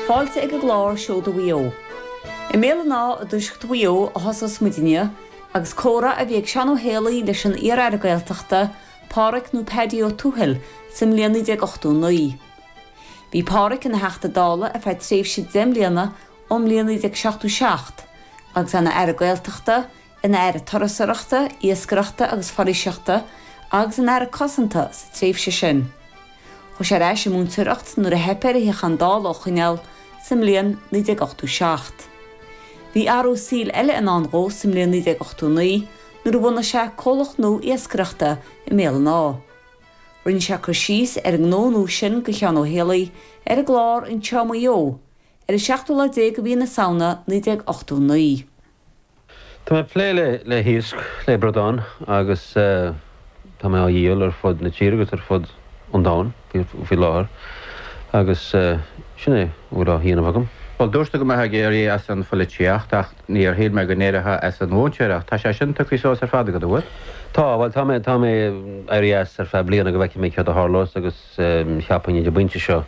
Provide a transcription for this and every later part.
Fáilte chuig an gclár Seoda Mhaigh Eo. I mBéal an Átha i dTuaisceart Mhaigh Eo a thosós muid inniu agus comhrá a bhí ag Seán Ó hÉalaí leis an iar-Aire Gaeltachta, Pádraig nó Paddy Ó Tuathail, sa mbliain 1989. Bhí Pádraig ina Theachta Dála ar feadh tréimhse deich mbliana ón mbliain 1977 agus ina Aire Gaeltachta, ina Aire Turasóireachta, Iascaireachta agus Foraoiseachta agus ina Aire Cosanta sa tréimhse sin. Chuaigh sé ar ais i múinteoireacht nuair a theip air a shuíochán Dála a choinneáil sa mbliain 1987. Bhí athrú saoil eile i ndán dhó sa mbliain 1989 nuair a bhunaigh sé comhlacht nua iascaireachta i mBéal an Átha. Rinne sé cur síos ar an ngnó nua sin do Sheán Ó hÉalaí ar an gclár Aon Scéal Maigh Eo ar an seachtú lá déag de mhí na Samhna 1989. Tá mé ag plé le hiasc, le bradáin agus tá mé á dhíol ar fud na tíre agus ar fud an domhain faoi láthair agus sin é a bhfuil á dhéanamh agam. Bhuel, dúirt tú go mbeifeá ag éirí as an pholaitíocht ach níor shíl mé go n-éireofá as an mhúinteoireacht. Tá sé sin tugtha suas ar fad agat, an bhfuil? Tá, bhuel, tá, tá mé ag éirí as ar feadh bliana go bhfeicfidh mé céard a tharlós agus Cheapfainn ag an bpointe seo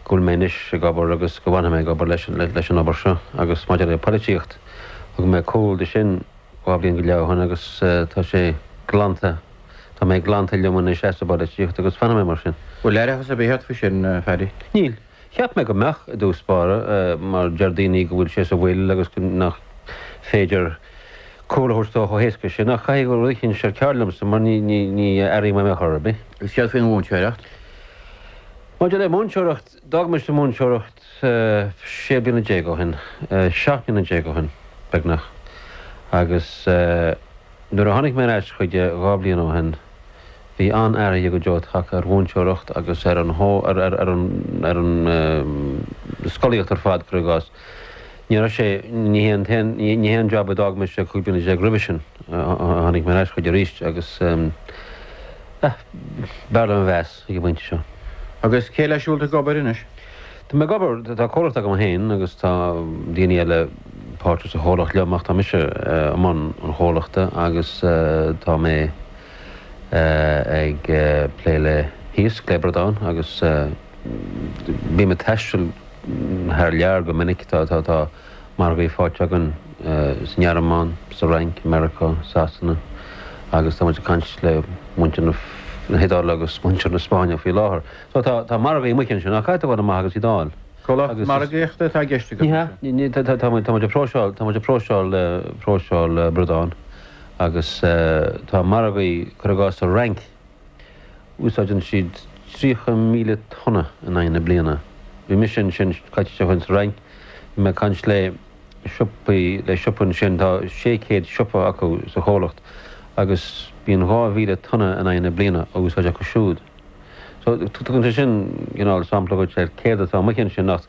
go bhfuil mé anois ag obair agus go bhfanfaidh mé ag obair leis an obair seo agus maidir le polaitíocht thug mé cúl di sin dhá bhliain go leith ó shin agus tá sé glanta, tá mé glanta liom amach as an bpolaitíocht agus fanfaidh mé mar sin. Bhfuil aiféala ar bith ort faoi sin, Phaddy? Níl. Cheap mé go mbeadh, i dtús báire, mar deir daoine go bhfuil sé sa bhfuil agus nach féidir cúl a thabhairt dó chomh héasca sin, ach caithfidh gur ritheann sé cearr liomsa mar ní airím uaim é chor ar bith. Agus céard faoin mhúinteoireacht? Maidir le múinteoireacht, d'fhág mé an mhúinteoireacht sé bliana déag ó shin, seacht mbliana déag ó shin, beagnach, agus. Nuair a tháinig mé ar ais chuige dhá bhliain ó shin, bhí an-athraithe go deo tagtha ar mhúinteoireacht agus ar a, ar an scolaíocht ar fad, cuir i gcás. Ní raibh sé, ní hé an jab a d'fhág mise cúig bliana déag roimhe sin a tháinig mé ar ais chuige arís agus b'fhearr liom a bheith as, ag an bpointe seo. Agus cé leis a bhfuil tú ag obair anois? Tá mé ag obair, tá comhlacht agam féin agus tá daoine eile páirteach sa chomhlacht liom ach tá mise i mbun an chomhlachta agus tá mé ag plé le hiasc, le bradáin agus bím ag taisteal thar lear go minic. Tá. Margaí faighte againn sa nGearmáin, sa Fhrainc, i Meiriceá, i Sasana agus tá muid ag caint le muintir na hIodáile agus muintir na Spáinne faoi láthair. So tá margaí amuigh ansin. Ach caithfidh tú a ghabháil amach agus iad a fháil. Comhlacht margaíochta atá i gceist agat anseo? Ní hea. Tá muid ag próiseáil, tá muid ag próiseáil, próiseáil bradán agus tá margaí, cuir i gcás sa Fhrainc, Úsáideann siad 30,000 tonna in aghaidh na bliana. Bhí mise ansin coicís ó shin sa Fhrainc, bhí mé ag caint le siopaí, le siopa ansin, tá 600 siopa acu sa chomhlacht agus bíonn 2,000 tonna in aghaidh na bliana á úsáid acu siúd. So tugann sé sin, you know, sampla dhuit ar céard atá amuigh ansin ach,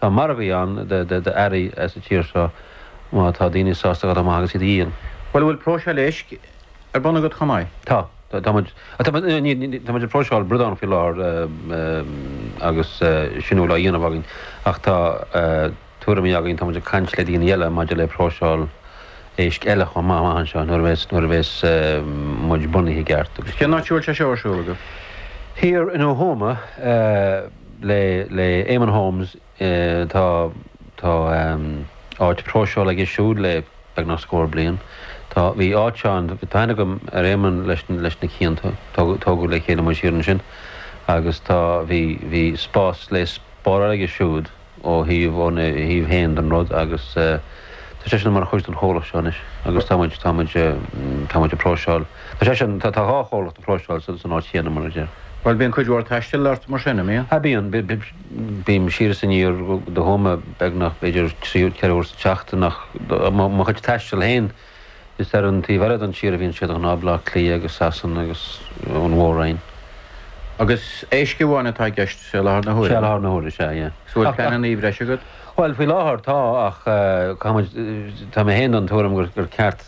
Tá margadh ann d'earraí sa tír seo má tá daoine sásta dul amach agus iad a dhíol. Bhuel, an bhfuil próiseáil éisc ar bun agat chomh maith? Tá. Tá muid ag próiseáil bradán faoi láthair agus sin a bhfuil á dhéanamh againn ach tá tuairimí againn, tá muid ag caint le daoine eile maidir le próiseáil éisc eile chomh maith amach anseo nuair a bheas muid bunaithe i gceart. Cén áit a bhfuil sé seo ar siúl agaibh? Thiar i nDumha Thuama. le hÉamonn Holmes, tá áit próiseála aige siúd le beag nach scór bliain. Bhí áit ann, tá aithne agam ar Éamonn leis na cianta, tógadh le chéile muid thiar ansin, agus bhí spás le spáráil aige siúd. ó thaobh, óna thaobh féin den rud agus tá sé sin mar chuid den chomhlacht seo anois agus tá muid, tá muid, tá muid ag próiseáil, tá sé sin, tá dhá chomhlacht ag próiseáil san, san áit chéanna mar a deir. Bhuel, bíonn cuid mhór taistil ort mar sin, an mbíonn? Á, bíonn, bím siar is aniar go Dumha Thuama beagnach b'fhéidir trí, ceithre uair sa tseachtain ach mo chuid taistil féin, Is ar an taobh eile den tír a bhíonn sé de ghnáth, Baile Átha Cliath agus Sasana agus an Mhór-Roinn. Agus éisc amháin atá i gceist, i láthair na huaire? Is é, i láthair na huaire, sea, yeah. So bhfuil pleananna faoi bhreis agat? Bhuel, faoi láthair tá ach, caithfidh muid, tá mé féin den tuairim gur cheart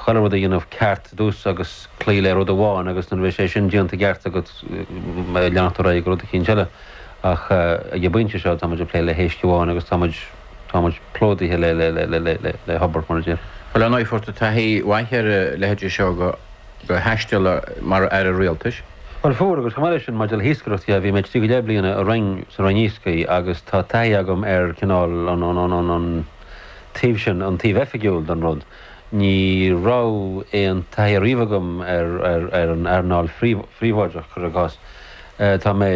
chuile rud a dhéanamh ceart i dtús agus cloí le rud amháin agus nuair a bheidh sé sin déanta i gceart agat leanacht ar aghaidh go rud eicínt eile. Ach ag an bpointe seo tá muid ag plé le héisc amháin agus tá muid, Tá muid plódaithe le hobair, mar a déarfá. Bhuel, ar ndóigh, fuair tú taithí mhaith ar a leithéidí seo de thaisteal mar Aire Rialtais. Bhuel, fuair agus chomh maith leis sin, maidir le hiascaireacht dhe, bhí mé trí go leith bliana i Roinn, sa Roinn Iascaigh agus tá taithí agam ar cineál an, an, an, an, an taobh sin, an taobh oifigiúil den rud. Ní raibh aon taithí ariamh agam ar, ar, ar an earnáil phríobháideach, cuir i gcás. Tá mé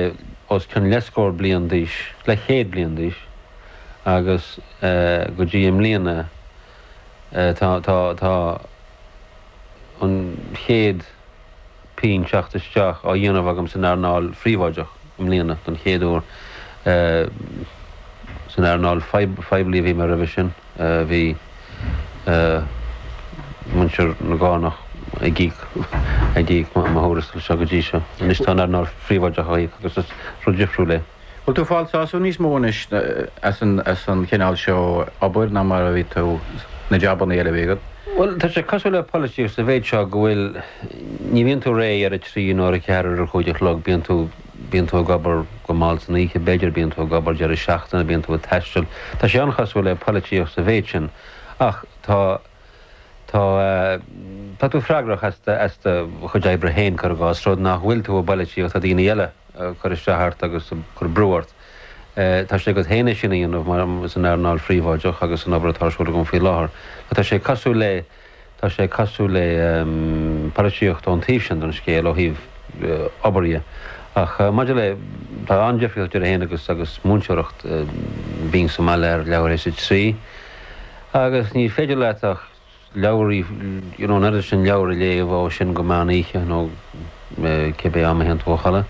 os cionn leathscór bliain d'aois, leathchéad bliain d'aois. agus go dtí i mbliana tá an chéad phingin teacht isteach á dhéanamh agam san earnáil phríobháideach i mbliana don chéad uair. San earnáil phoiblí a bhí mé roimhe sin, bhí muintir na gcánach ag íoc mo thuarastalsa go dtí seo, anois tá an earnáil phríobháideach á íoc agus is rud difriúil é. Bhfuil tú ag fáil sásamh níos mó anois as an chineál seo obair ná mar a bhí tú sna jabannaí eile a bhí agat? Bhuel, tá sé cosúil le polaitíocht sa mhéid seo go bhfuil, ní bhíonn tú réidh ar a trí nó ar a ceathair ar a chúig a chlog, bíonn tú, bíonn tú ag obair go mall san oíche b'fhéidir, bíonn tú ag obair deireadh seachtaine, bíonn tú ag taisteal, tá sé an-chosúil le polaitíocht sa mhéid sin ach tá, Tá, tá tú freagrach as do, as do chuid oibre féin, cuir i gcás, rud nach bhfuil tú i bpolaitíocht, tá daoine eile ag cur isteach ort agus ag cur brú ort. Tá sé agam féin é sin a dhéanamh mar, san earnáil phríobháideach agus san obair atá ar siúl agam faoi láthair. Ach tá sé cosúil le, tá sé cosúil le polaitíocht ón taobh sin den scéal, ó thaobh obair dhe. Ach maidir le, tá an-difríocht idir é féin agus, agus múinteoireacht. Bhínn sa mbaile ar leathuair théis a trí. Agus ní féidir leat ach leabhar, you know, an oiread sin leabhar a léamh ó sin go meán oíche nó cibé am a théann tú a chodladh.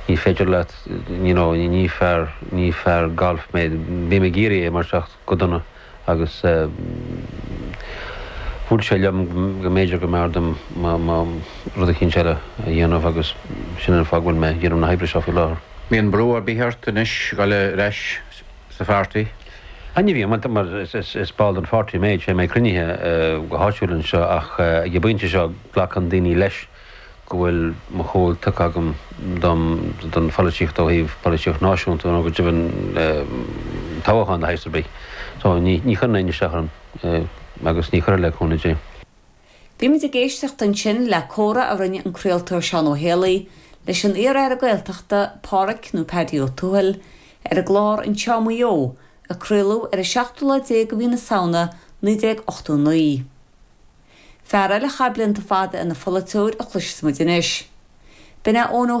Ní féidir leat, you know, ní fear, ní fear gailf mé, bím ag iarraidh é mar seo ach go dona agus bhuail sé liom go mb'fhéidir go mb'fhearr dom, á, rud eicínt eile a dhéanamh agus sin an fáth go bhfuil mé ag déanamh na hoibre seo faoi láthair. An mbíonn brú ar bith ort anois dul ar ais. sa pháirtí. Ní bhíonn, mar is ball den pháirtí mé, téann mé ag cruinnithe go háitiúil anseo ach ag an bpointe seo glacann daoine leis go bhfuil mo chúl tugtha agam don, don pholaitíocht ó thaobh polaitíocht náisiúnta nó go deimhin toghcháin de shaghas ar bith. So ní chuireann éinne isteach orm agus ní chuirfidh le cúnamh Dé. Bhí muid ag éisteacht ansin le comhrá a rinne an craoltóir Seán Ó hÉalaí leis an iar-aire Gaeltachta, Pádhraic, nó Paddy, Ó Tuathail ar an gclár Anseo Maigh Eo a craoladh ar an seachtú lá déag de mhí na Samhna 1989. Fear eile a chaith blianta fada ina pholaiteoir a chloiseas muid anois. B'in é Eoin Ó.